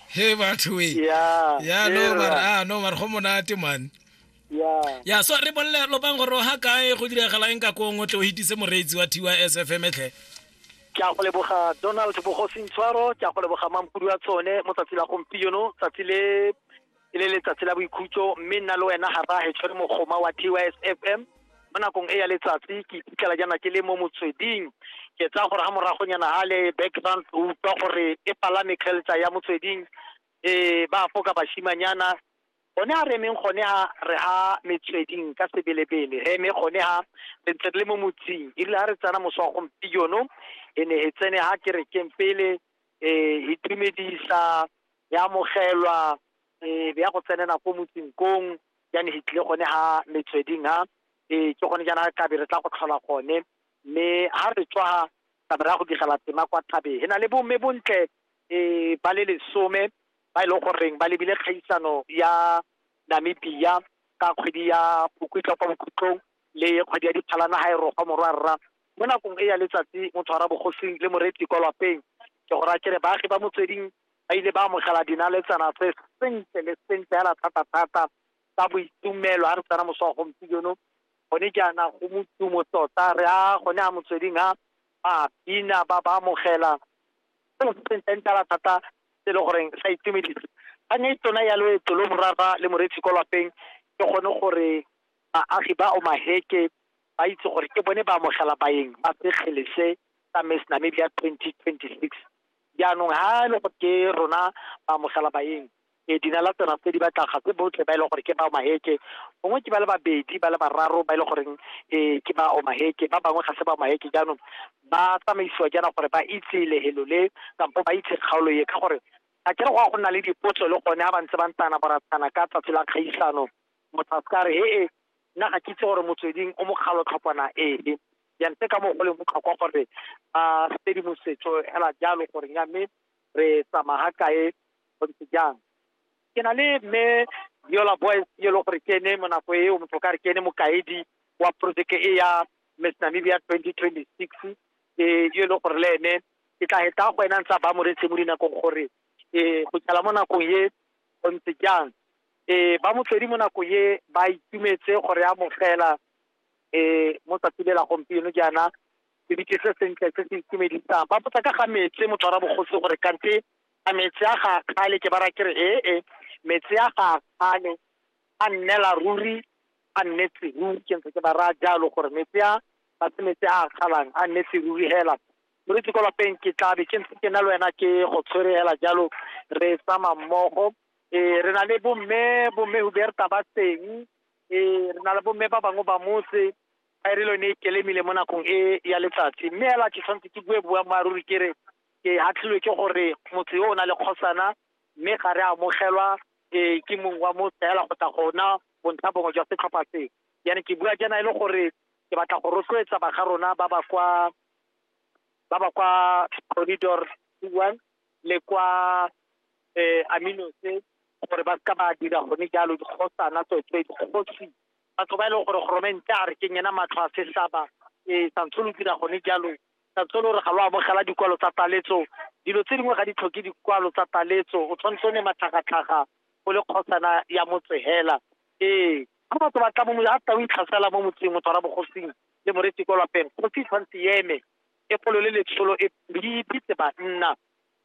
he batho e ya ya no era. mara ah no mara go monate man ya ya so re bolle lopang gore o ha kae go diragala eng ka kong o tle o hitise moreetsi wa tys fm tlhe ke a go leboga donald bogosintshwaro ke a go leboga mampudu wa tsone mo tsatsi la gompieno tsatsi le e le letsatsi la boikhutso mme nna le wena ga rage tshwere mogoma wa tys f m mo nakong e ya letsatsi ke iphitlhela jaana ke le mo motsweding ke tsaya gore ga moragonyana ga le background o utlwa gore e palame kgeltsa ya motsweding um ba foka bashimanyana gone ga re emeng gone ga re ga metsweding ka sebelebele re eme gone ga re ntse re le mo motsing erile ga re tsena moso wa gompieno e ne e tsene ga kerekeng pele um e tumedisa ya amogelwa e be ya go tsenela ko motseng kong jane he tlile gone ha metsweding ha e ke gone jaana kabe re tla go tlhola gone mme ha re tswa kabe re ya go digela tema kwa thabeng he na le bomme bontle um ba le lesome ba e leng goreng ba lebile kgaisano ya namibia ka kgwedi ya bokwitlwa kwa bokhutlong le kgwedi ya diphalana ga e rogwa morwa rra mo nakong e ya letsatsi motho wa rabogosing le moreetsi kwa lapeng ke go raya kere baagi ba motsweding ba ile ba amogela dinaletsana tse sentle le sentle hela thata-thata ka boitumelo a re tsena moso wa gompieno gone jaana go motumo tota re a gone a motsweding a ba bina ba ba amogela seo se sentleng tala thata se e le goreng sa itumedisa kgang e tsona ya loeto lo morara le moreetsi ko lapeng ke gone gore baagi ba omaheke ba itse gore ke bone ba amogela baeng ba sekgele se sa miss namibia 2026 Jaanong ha e le gore ke rona ba amogela baeng e dina la tsena tse di batla ga se botlhe ba e leng gore ke ba omaheke gongwe ke ba le babedi ba le bararo ba e leng goreng um ke ba omaheke ba bangwe ga se ba omaheke jaanong ba tsamaisiwa jaana gore ba itse lehelo le kampo ba itse kgaolo e ka gore ga kere go ya go nna le dipotso le gone ga ba ntse ba ntana boratana ka tsatsi la kgaisano motho a se ka re he e nna ga ke itse gore motsweding o mokgalo tlhopana ee jang tse ka mo go leng botlhokwa gore ba tshedimosetso hela jalo gore nya mme re tsamaga kae go ntse jang ke na le mme yola boys e le gore ke ene mo nako eo motho ka re ke ene mokaedi wa projeke e ya miss namibia 2026 e e le gore le ene ke tla heta go ena ntsa ba moretse mo dinakong gore e go tsala mo nakong ye go ntse jang e ba motswedi mo nakong ye ba itumetse gore ya mogela um mo tsatsi le la gompieno jaana se bitse se sentle se se itumedisang ba botsa ka ga metse motshwara bogosi gore kante a metse a ga kgale ke bara kere ee eh, eh, metse a ga kgale a nnela ruri a nnetse ruri ke ntse ke ba raya jalo gore metse a ba se metse a kgalang a nnetse ruri hela moritse ko lapeng ke tlabe ke ntse ke na le wena ke go tshwere hela jalo re tsama mmogo um re na le bomme bomme huberta ba teng Ee, re na le bomme ba bangwe ba motse ba e re le yone e kelemile mo nakong e ya letsatsi mme ela ke tshwanetse ke bue boammaaruri ke re ke hatlhilwe ke gore motho yo o na le kgosana mme ga re amogelwa um ke mong wa motse fela go tla gona bontlha bongwe jwa setlhopha seo yana ke bua jaana e le gore ke batla go rotloetsa ba ga rona ba ba kwa ba ba kwa corridor one le kwa amino se gore ba seka ba dira gone jalo dikgosana tsotse dikgosi batho ba e leng gore goromente a re ke nyena matlho a sesaba um santse lo dira gone jalo santse lo re ga lo amogela dikwalo tsa taletso dilo tse dingwe ga di tlhoke dikwalo tsa taletso o tshwanetse o ne matlhagatlhaga o le kgosana ya motsehela ee ga batho ba tla mo a tla o itlhasela mo motseng motho wa bogosing le moreti kwa lapeng kgosi tshwanetse eme Pefolo le letsholo e di ipitse banna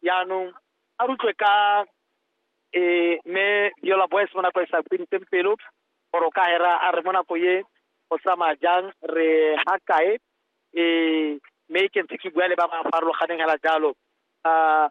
jaanong a rutlwe ka e me Viola Boys mo nako e sa fediseng pelo gore o ka hera a re mo nako ye go tsamaya jang re ha kae e me ke ntse ke bua le ba ba farologaneng hela jalo uh,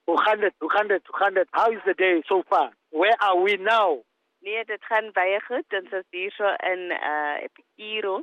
200, 200, 200. How is the day so far? Where are we now? Nee, dit gaan baie goed. Ons is hier so in uh Epikiro.